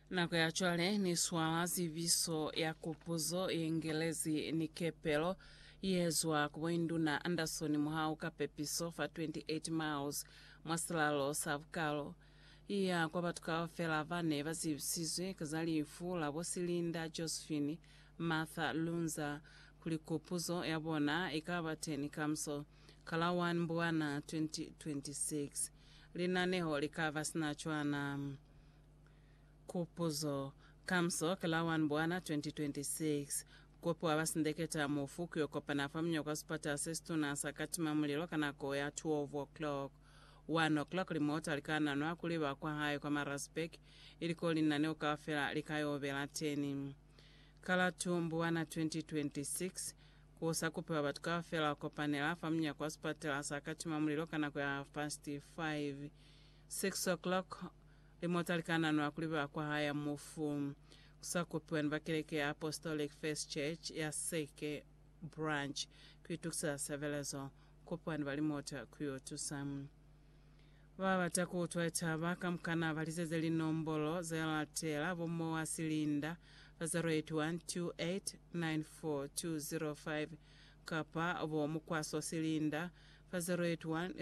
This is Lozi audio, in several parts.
Nako ya cwale ni swala zibiso ya kupuzo ye ngelezi ni kepelo ye zwa ku Boinduna Anderson muhau ka pepiso fa 28 miles mwa silalo sa bukalo. I ya kwa batu kaufela ba ne ba zibisizwe ka za lifu la bo Silinda Josephine Martha Lunza kuli kupuzo ya bona i ka ba teni kamuso. ka la 1 Mbwana 2026. Linaneho li ka ba sina cwana. Kupuzo, Kamso ki la 1 Mbwana 2026, kupi wa basindeketa mufu ki yo kopana fa muño kwa sipata se situna sa katima mulilo ka nako ya 12 o'clock. 1 o'clock limota li ka nanwa kuli ba kwa hae kwa Maritzburg, ili ko linaneo kaufela li ka yo bela teni. Ka la 2 Mbwana 2026, Ku sa kupiwa batu kaufela ku kopanela fa munyako wa sipatela sa ka tima mulilo ka nako ya half past five, six o'clock, limota li ka nanwa kuli ba kwa haya mufu. Ku sa kupiwa ni ba keleke ya Apostolic Faith Church ya Seke Branch ku itukiseza sebelezo, kupiwa ni ba limota ku yo tusa. Ba bata ku utwa litaba kamukana ba liseze linombolo ze latela, bo Moa Silinda, fa 081 2894 205, kapa bo Mukwaso Silinda, fa 081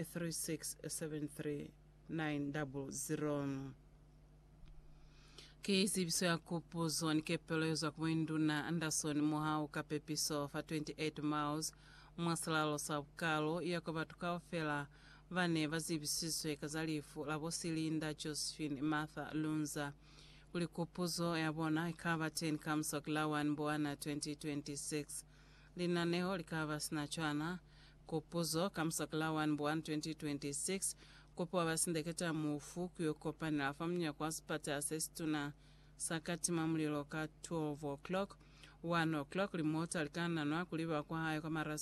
3673900. Ki tsebiso ya kupuzo ni kepelo ye zwa ku Muinduna Anderson Mohau ka pepiso fa 28 miles mwa silalo sa Bukalo, i ya kwa batu kaufela ba ne ba zibisizwe ka za lifu la bo Silinda Josephine Martha Lunza kuli kupuzo ya bona i ka ba teñi ka Mswaki la 1 Mbwana 2026. Linaneho li ka ba sina cwana. Kupuzo, Ka Mswaki la 1 Mbwana 2026, kupo ba sindeketa mufu ku yo kopanela fa munyako wa sipatala se situna sa katima mulilo ka 12 o'clock. 1 o'clock, limota li ka nanwa ku liba kwa hae kwa Marasburg.